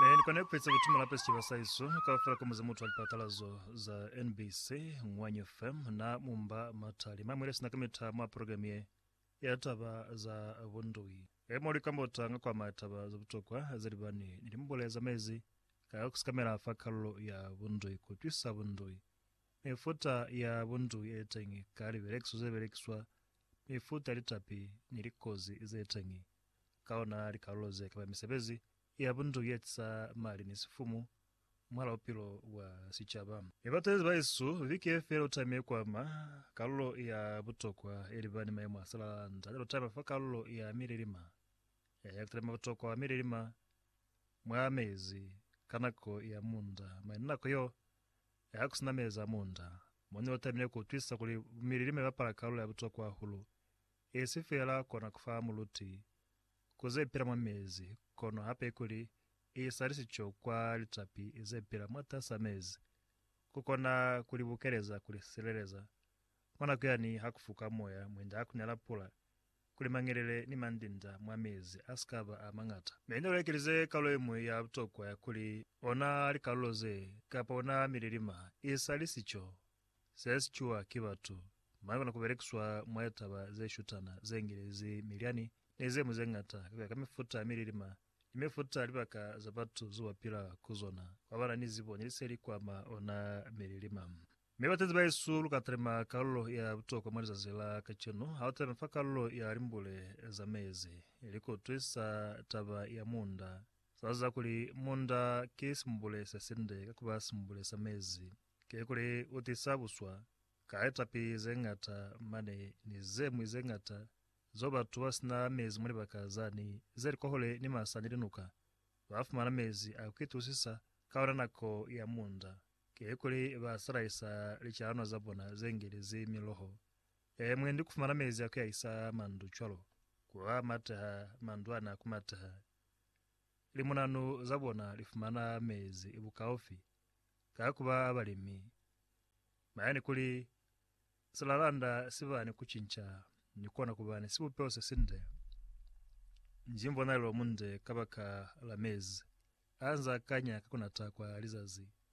Ne ni kona kueza kuti mulape sicaba sa hesu kaufela ka muzimu utwa lipatalazo za NBC, Ngwanyo FM na mumba matali mamwe lesina ka mita mwa programe ye ya taba za bundui. Emo li kambota nga kwa ma taba za butokwa ze libani ni limbule za mezi ka kusikamela fa kalulo ya bundui, kutwisa bundui, mifuta ya bundui e teñi ka libelekiso ze belekiswa mifuta litapi ni likozi zeteñi ka ona likalulo ze kaba misebezi ya bundu ye tisa mali ni sifumu mwala bupilo bwa sicaba. Mi batezi baesu, viki ye fela lutami ye kwama kalulo ya butokwa ye liba ni maemo a salala nda lya lutami fa kalulo ya mililima ya hektare mwa butokwa wa mililima mwa mezi ka nako ya munda mwa nako yo ya ku sinameleza munda, mo ne lu tabile ku utwisisa kuli bumililima i bapala kalulo ya butokwa hahulu, i si feela kona ku fa muluti ku ze pila mwa mezi kono hape kuli i isa lisico kwa litapi ze pila mwatas'a mezi, ku kona ku li bukeleza, ku li sileleza mwa nako yani ha ku fuka moya mwinda ha ku nela pula, kuli mangelele ni mandinda mwa mezi a si ka ba a mañata. Mi ne lu ekelize kalulo ye ñwi ya butokwa ya kuli ona likalulo ze, kapa ona mililima, i sa li sico se si cuwa ki batu, mane kona ku belekiswa mwa litaba ze shutana ze ngelezi milyani ni ze ñwi ze ñata ka ku ya ka mifuta ya mililima ni mifuta ya libaka za batu zo ba pila ku zona, kwa ba na ni zibo ni liseli kwa ma ona mililima. Mi bateñi bahesu, lu ka talima kalulo ya butokwa mwa lizazi la kacenu, ha lu talima fa kalulo ya limbule za mezi, likotwi sa taba ya munda. Sa ziba kuli munda ki simbule se sinde ka kuba simbule sa mezi, kikuli u tisa buswa, ka litapi ze ñata mane ni ze ñwi ze ñata zeo batu ba sina mezi mwa libaka zani ze li kwahule ni masa ni linuka, ba fumana mezi a ku itulusisa ka yona nako ya munda. Kikuli ba salahisa licalanwa za bona ze ngelezi miloho e mwe ni ku fumana mezi a ku yahisa mandu cwalo ku a mateha mandu a ne a ku mateha. Limunanu za bona li fumana mezi bukaufi ka ku ba balimi. Maya ni kuli silalanda si ba ni ku cinca ni kona ku ba ni sibupeho se sinde, nji mbonalelo munde kabaka la mezi a nza kanya ka ku nata kwa lizazi.